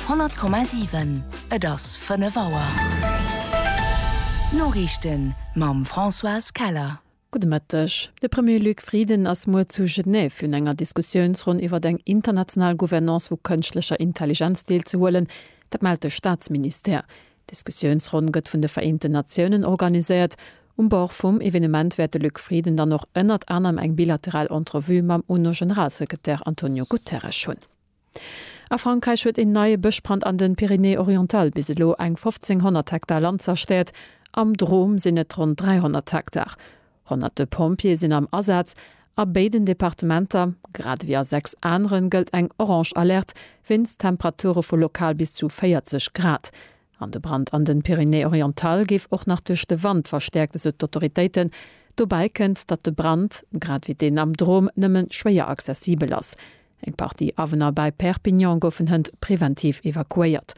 100,7 Et ass 5 Auer. D'Noriichten mam Françoise Keller. Gudde Mëtteg. De Premier Luc Frieden ass muer zu Genève un enger Diskussiounsronn iwwer eng international Gouvernance vu kënschtlecher Intelligenz deelzehuelen. Dat mellt de Staatsministère. D'Diskussiounsronn gëtt vun de Vereenten Natiounen organiséiert. Um Bord vum Evenement wäert de Luc Frieden dann och ënnert anerem eng bilateral Entrevue mam UNO-Generalsekretär Antonio Guterres hunn. A Frankräich huet een neie Bëschbrand an de Pyrénées-Orientales bis elo eng 1.500 Hektar Land zerstéiert. Am Drôme sinn et ronn 300 Hektar. Honnerte Pompjeeë sinn am Asaz. A béiden Departementer, grad ewéi a sechs aneren, gëllt eng orange Alerte wéinst Temperature vu lokal bis zu 40 Grad. An de Brand an den Pyrénées-Orientales géif och nach duerch de Wand verstäerkt, esou d'Autoritéiten. Dobäi kënnt, datt de Brand, grad ewéi deen am Drôme, nëmmen schwéier accessibel ass. Eng Partie Awunner bäi Perpignan goufen hënt preventiv evakuéiert.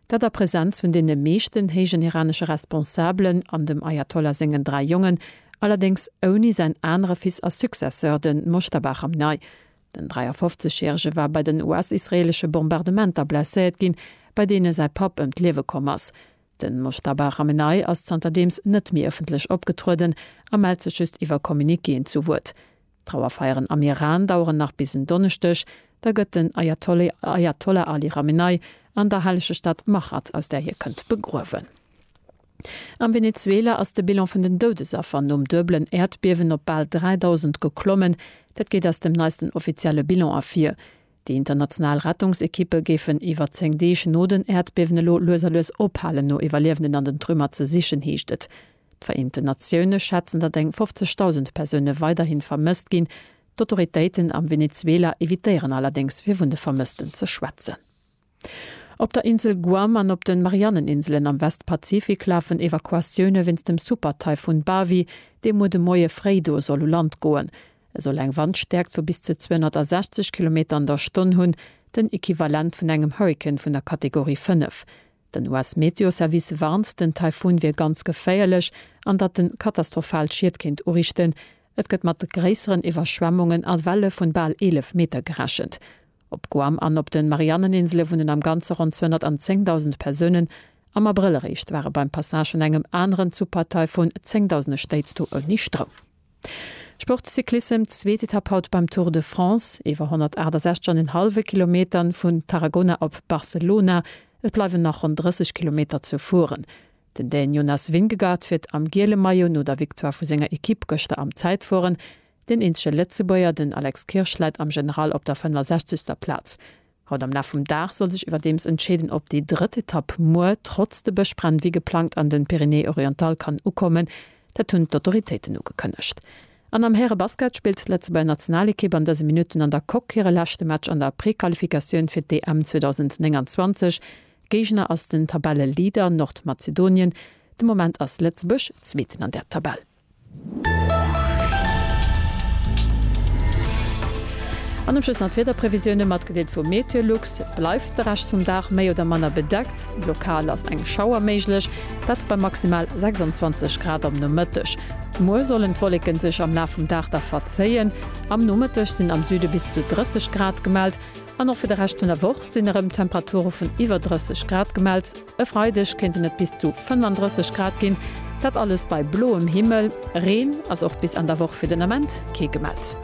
Dat a Presenz vun deene meeschten héijen iranesche Responsabelen an dem Ayatollah sengen dräi Jongen, allerdéngs ouni säin anere Fils a Successeur, de Mojtaba Chamnai. Den 53 järege war bei den US-israeelesche Bombardementer blesséiert ginn, bei deene säi Papp ëm d'Liewe komm ass. De Mojtaba Chamenei ass zanterdeems net méi ëffentlech opgetrueden a mellt sech just iwwer Communiquéen zu Wuert. D'Trauerfeieren am Iran daueren nach bis en Donneschdeg, da gëtt den Ajatollah Ali Ramenei an der hellege Stad Machhad, aus där hie kënnt, begruewen. Am Venezuela ass de Bilan vun den Doudesaffer nom duebelen Äerdbiewen op bal 3.000 geklommen. Dat geet aus dem neisten offizielle Bilan ervir. Déi international Rettungsekippe géifen iwwer 10 Deeg no den Äerdbiewen elo lues a lues ophalen, no Iwwerliewenden an den Trümmer ze sichen, heescht et. D'Vereenten Natioune schätzen, datt eng 50.000 Persoune weiderhi vermësst ginn. D'Autoritéiten am Venezuela evitéieren allerdéngs, fir vun de Vermëssten ze schwätzen. Op der Insel Guam an op de Marianneninselen am Westpazifik lafen Evakuatioune wéinst dem Super-Taifun Bavi, dee muer de Moie fréi do soll u Land goen. E soll eng Wandstäerkt vu bis zu 260 Kilometer an der Stonn hunn, den Equivalent vun engem Hurrikan vun der Kategorie 5. Den US-Meteoservice warnt, den Taifun wier ganz geféierlech an datt en katastrophal Schied kéint urichten. Et gëtt mat gréisseren Iwwerschwemmungen a Welle vun bal 11 Meter gerechent. Op Guam an op de Marianneninsele wunnen am Ganze ronn 210.000 Persounen. Am Abrëll eréischt ware beim Passage vun engem aneren Supertaifun zéngdausende Stéit do ouni Stroum. Sport, Cyclissem, Zweet Etapp haut beim Tour de France, iwwer 168 an en hallwe Kilometern vun Tarragona op Barcelona. Et bleiwen nach ronn 30 Kilometer ze fueren. Den Dän Jonas Vingegaard fiert am giele Maillot no der Victoire vu senger Ekipp gëschter am Zäitfueren. Deen eenzege Lëtzebuerger, den Alex Kirsch, läit am General op der 65. Plaz. Haut am Laf vum Dag soll sech iwwerdeems entscheeden, ob déi drëtt Etapp muer trotz de Bëschbränn wéi geplangt an den Pyrénées-Orientales kann ukommen. Dat hunn d'Autoritéiten ugekënnegt. An am Häre-Basket spillt d'Lëtzebuerger Nationalekipp an dëse Minutten an der Coque hire leschte Match an der Prequalifikatioun fir d'EM 2029. Géigner ass den Tabelleleader Nordmazedonien. De Moment ass Lëtzebuerg Zweeten an der Tabell. An um Schluss nach d'Wiederprevisioune matgedeelt vu MeteoLux. Et bleift de Rescht vum Dag méi oder manner bedeckt, lokal ass eng Schauer méiglech, dat bei maximal 26 Grad am Nomëtteg. Muer sollen d'Wolleke sech am Laf vum Dag da verzéien, am Nomëtteg sinn am Süde bis zu 30 Grad gemellt. An och fir de Rescht vun der Woch sinn erëm Temperature vun iwwer 30 Grad gemellt. E Freideg kéinten et bis zu 35 Grad ginn, dat alles bei bloem Himmel. Reen ass och bis an der Woch fir den Ament kee gemellt.